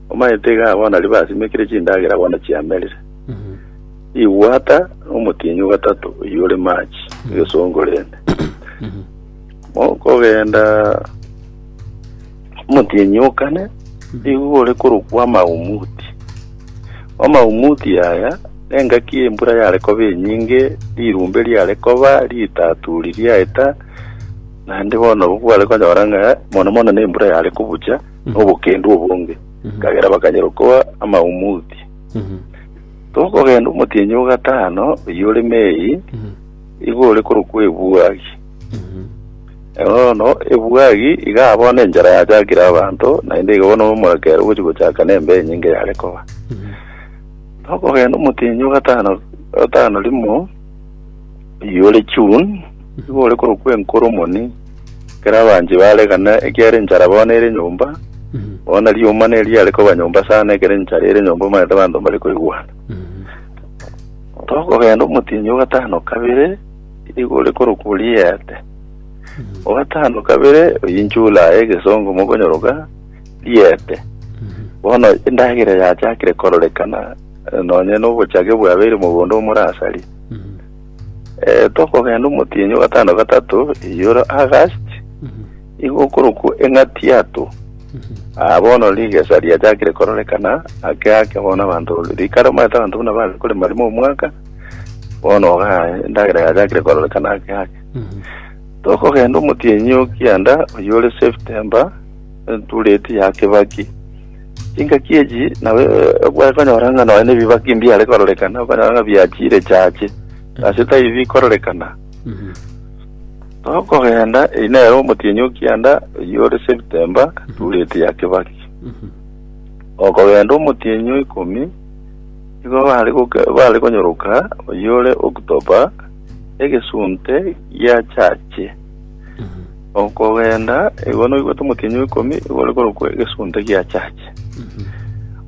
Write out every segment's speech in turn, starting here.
Omanyete iga abana aria basimekire chindagera bono chiamerire. Igwata omotienyi o gatato oyio ore machi, egesongo rende. Mokogenda omotienyi o kane, nigo ore korokwa amaumuti. Amaumuti aya, engaki embura yare koba enyinge, rirumbe riare koba, ritaturi riaeta, naende bono nabwo kware konyora ng'a mono mono nembura yare kobucha, nobokendu obonge, kagera bakanyara okoa amaumuti. Tokogenda omotienyi o gatano, oyio ore Mei, igo ore korokwa Ebuagi. Bono Ebuagi iga bono enchara yachakire abanto, naende iga bono omoraka ere ogochi gochaka nembe enyinge yare koba. Tokogenda omotienyi o gatano, gatano rimo, Iyore June, nigo ore korokwa enkoro omoni, ekero abanche baregana ekiara enchara bono ere nyomba, bono rioma nere riare koba nyomba sana, ekero enchara ere nyomba omanyete abanto mbare koigwana. Tokogenda omotienyi o gatano kabere, nigo ore korokwa Oriete. O gatano kabere, oyio July, egesongo mokonyoroka, Riete. Bono endagera yachakire kororekana, eh, nonye nobochage bwabeire mogondo omorasari. Eh, tokogenda omotienyi o gatano gatato eyioro August igo okorokwa eng'atiato Ah, bono rigesa riachakire kororekana ake ake bono abanto rikare omanyete abanto buna bare korema rimo omwaka bono ga endagera yachakire kororekana ake ake tokogenda omotienyi o kianda oyo ore september entureti ya kibaki Engaki echi nabo egokonyora ng'a nonya nebibake mbiare kororekana, okonyora ng'a biachire chache, ase tari bikororekana. Tokogenda, eyi nere omotienyi o kianda oyio ore Septemba, Turieti ya Kibaki. Okogenda omotienyi o ikomi, igo bare goke- bare konyoroka oyio ore October, egesunte gia chache. Okogenda, igo noigwete omotienyi o ikomi, igo ore korokwa egesunte gia chache.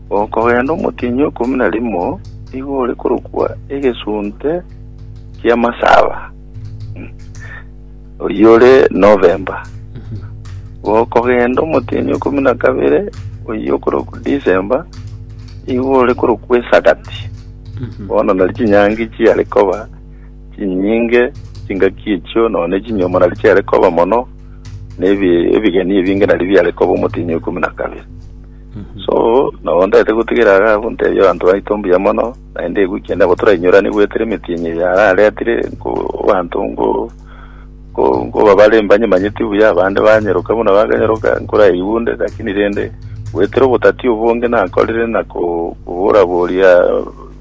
Okogenda omotienyi o ikomi na rimo, igo ore korokwa egesunte gia masaba. Mm. Oyio ore November. Okogenda omotienyi o ikomi na kabere, oyio okorokwa December, igo ore korokwa esagati. Bono nari chinyangi chiare koba Chinyinge, chingaki echio, nonya ne chinyomora nario chiare koba mono, na ebi- ebigeni ebinge nario biare koba omotienyi o ikomi na kabere. So, nabo ntaete gotigera iga abwo ntebie abanto baito mbuya mono, naende egwe ekiagera nabo torainyurane goetera emetienyi eye araretire, nko abanto nko nko nkobabare mbanyemanyeti buya, abande banyeroka buna bakanyeroka, nkoraigwe onde, lakini rende goetera obotati obonge nakorire na ko- koboraboria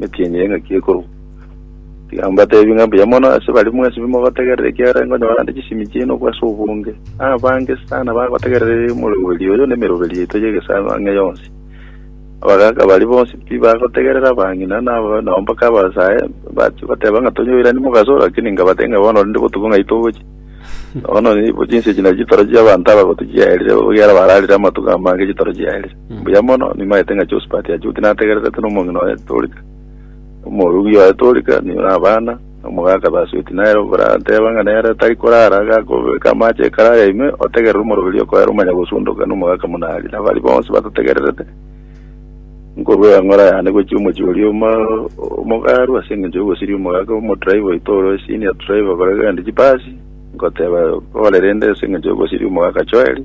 Nekienyeya ng'aki ekorwa. Tiga mbateebie ng'a mbuya mono ase baria mwesibire mogotegerera, ekiagera nkonyora ande chisemi chiaino agwo ase obonge. Abange sana bagotegerera ere omoreroberio oyo na emeroberio yaito y'egesaku ang'e yonsi. Abagaaka baria bonsi tibagotegerera abang'ina na aba- nao mpaka abasae bachia goteba ng'a tonyoirani mogaso, lakini nkabatebia ng'a bono rende botuko ng'ai togochia. Bono nigo chinse echi nario chitoro chi'abanto aba gotichiaerire, ekiagera bararire amatuko amange chitoro chiaerire. Mbuya mono, nimanyete ng'a Josphat achoki nategererete nomong'ina oye Torika, omoorugi oye Torika, nigo nabana, na omogaka thus with Nero, barateba ng'a nere tari korara, gakobeka amache ekero aye ime, otegerere omoroberio okoera omanya gosundoka, na omogaka buna aria, na baria bonsi batotegererete, nkorwa egang'ora yane gochia omochie oria omo, omogaru, ase engencho y'ogosiria omogaka, omodriver oito ore senior driver korega rende chibasi, ngoteba, Kore rende ase engencho y'ogosiria omogaka Joel,